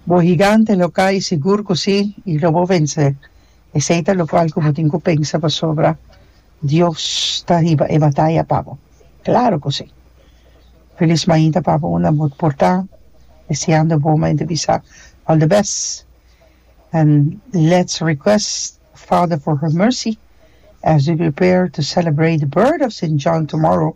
Bo higante lo cay, sigur cu si, y lo bo vence. Esey ta locual cu bo tin cu pensa pasobra Dios ta riba e bataya pa bo. Claro cu si! Feliz mainta pa bo unda bo por ta, deseando bo mainta bisa all the best and let's request Father for her mercy as we prepare to celebrate the birth of Saint John tomorrow.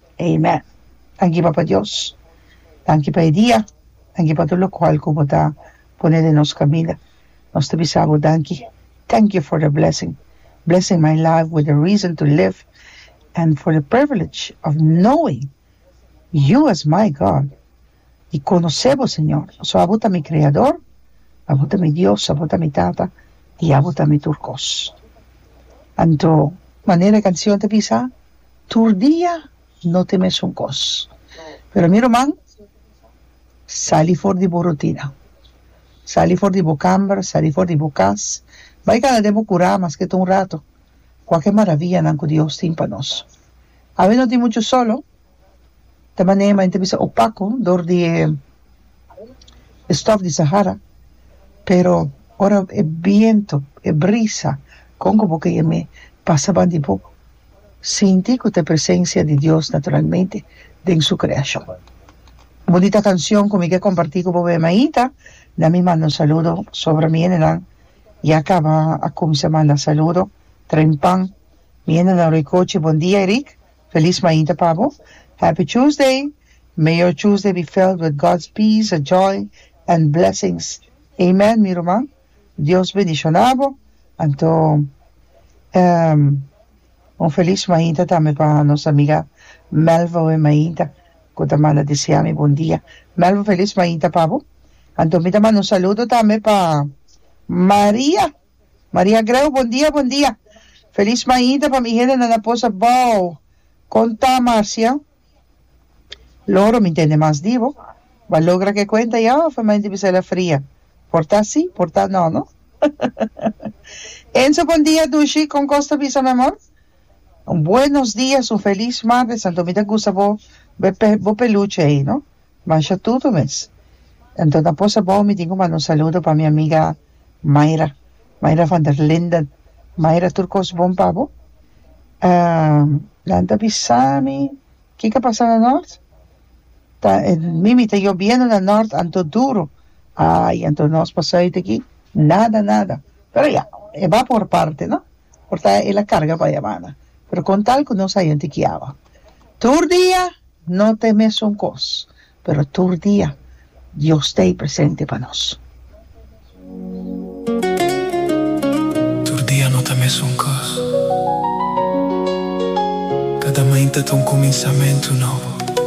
Amen. Tanki Papa Dios. Tanki pa e dia. Tanki pa tur locual cu bo ta pone den nos caminda. Nos ta bisa bo danki. Thank you for the blessing. Blessing my life with the reason to live and for the privilege of knowing you as my God. i konosé bo, Señor, pasobra abo ta mi Kreador, abo ta mi Dios, abo ta mi Tata i abo ta mi tur kos. Anto, manera e kansion ta bisa, tur dia no ta e mesun kos. Pero mi ruman, sali for di bo rutina, sali for di bo kamber, sali for di bo kas, bai kanda den bo kurá, maske ta un rato, kuaker maravianan ku Dios tin pa nos. Awe no tin muchu solo. ta manera ma ta bisa opaco dor di e stof di sahara pero ora e biento e brisa con cu bo key me pasa ban di bo sinti cu ta e presencia di Dios naturalmente den su creacion bonita cancion cu mi ke comparti cu bo me amiguita na mi manda un saludo sobra mi gentenan ya caba a cuminsa manda saludo treinpan mi gentenan Rui Cochi bon dia Erick Feliz mainta pa bo. Happy Tuesday! May your Tuesday be filled with God's peace, joy and blessings. Amen mi ruman. Dios bendiciona bo. Anto un feliz mainta tambe pa nos amiga Melva Win Mainta cu ta manda desea mi bon dia. Melva feliz mainta pa bo. Anto mi ta manda un saludo tambe pa Maria Maria Greu, Bon dia, bon dia. Feliz mainta pa mi hende nan a pos abao. Kon ta Marcia? Loro, mi ntende mas di bo. Bo a logra ke kuenta ya of e mainta bisa el a fria? Por ta si, por ta no, no? Enzo, Bon dia Dushi, kon kos ta bisa mi amor? Un buenos dias, un feliz martes, anto mi ta gusta bo be bo peluche ei, no? Masha tutu mes. Anto na por sabao mi tin cu manda un saludo pa mi amiga Mayra Mayra van der Linden Mayra tur cos bon pa bo? nan ta bisami kico pasa na Nort? ta mimi ta yobiendo na Nort anto duro ay anto nos pa Zuid aki nada nada pero ya e ba por parte no por ta e la carga pa yamana pero con tal cu nos a identikiaba. Tur dia no ta e mesun kos, pero tur dia Dios ta ei presente pa nos. Tur dia no ta mesun kos. Kada mainta ta un kuminsamentu nobo.